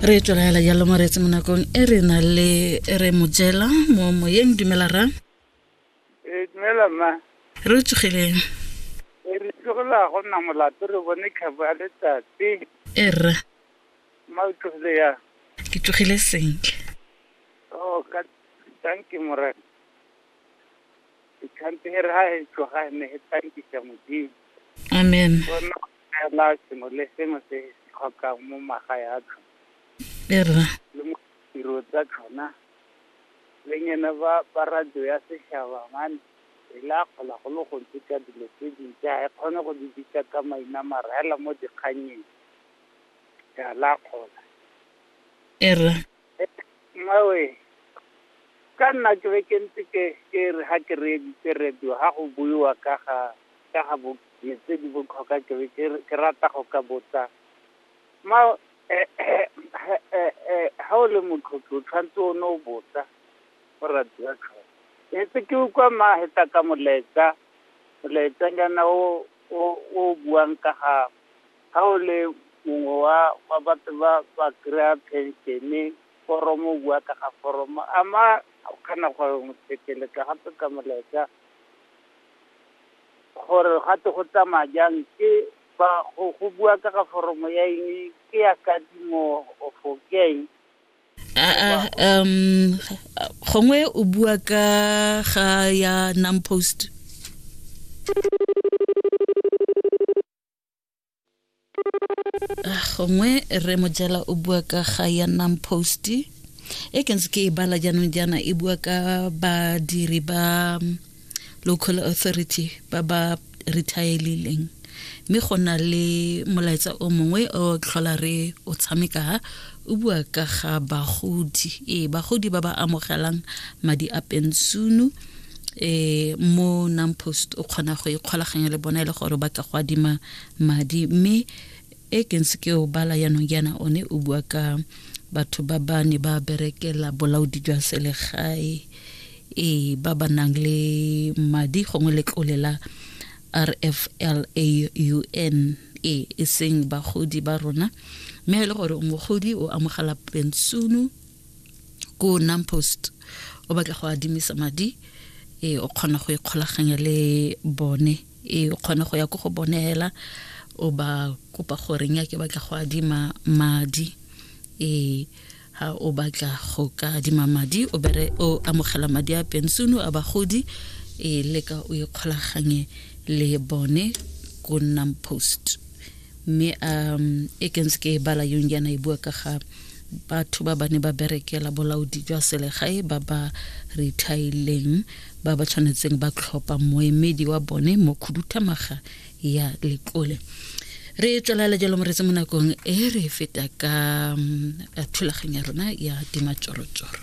re tswelaela jalo moreetse mo nakong e re na le re mojela mo moyeng dumela ra ee dumela ma re o tsogileng e re tlogela go nna molato re bone kgabo ya letsatsi e rra ma o tlogile ya ke tsogile sentle o oh, ka tanke morena Ditlhantshe re ha e tswa ga ne e tlankisa modimo. Amen. La sengwe le sengwe se se tlhokang mo maga ya tlho. Erra. Le mo tiro tsa tlhona. Le nyene ba ba radio ya seshaba mane e la kgola go le gontsi ka dilo tse dintsi ga e kgone go di bitsa ka maina mara hela mo dikgannyeng ya la kgola. Erra. Mmawe, ka nna ke be ke ntse ke ke re ga ke reeditse radio ga go buiwa ka ga ka ga bo tse di botlhokwa ke be ke re ke rata go ka botsa mma ga o le motlhophi o tshwanetse o ne o botsa go radio tlhoko. Ke ntse ke utlwa mma a heta ka molaetsa molaetsanyana o o o buang ka ga Ha o le mongwe wa wa batho ba ba kry-ang phenšene, foromo o bua ka ga foromo, a mma o kgona go mo thekeletsa gape ka molaetsa, gore ga twe go tsamaya jang ke ba go go bua ka ga foromo ya eng, ke ya kadimo of ke ya eng. Ah, ah, um gongwe o bua ka ga ya non-post ah, gongwe re mojela o bua ka ga ya nnang posti e ke ntse ke e bala jaanong jaana e bua ka badiri ba mm, local authority ba ba retireileng mme go na le molaetsa o mongwe o tlhola re o tshameka o bua ka ga bagodi ee bagodi ba ba amogelang madi a pensunu eh mo nampost o kgona go ikgolaganya le bona e le gore ba ka go adima madi mme e ke ntse ke o bala yanong yana one o bua ka batho ba ba ne ba berekela bolaodi jwa selegae e ba ba nang le madi gongwe letlole la rflaun e e seng bagodi ba rona mme e le gore mogodi o amogela pensiono ko nampost o batla go adimisa madi e o kgona go ikgolaganya le bone e o kgona go ya ko go bone hela o ba kopa gore nya ke batla go adima madi e ha o batla go ka adima madi o bere o amogela madi a pensiono a bagodi e leka o ikgolaganye le bone ko nnang post Mme a e ke ntse ke e bala yong yana e bua ka ga batho ba ba ne ba berekela bolaodi jwa selegae ba ba rethaileng ba ba tshwanetseng ba tlhopha moemedi wa bone mo khuduthamaga ya letlole re tswelela jalo moretse mo nakong e re feta ka mm, thulaganyo ya rona ya dimatšorotsoro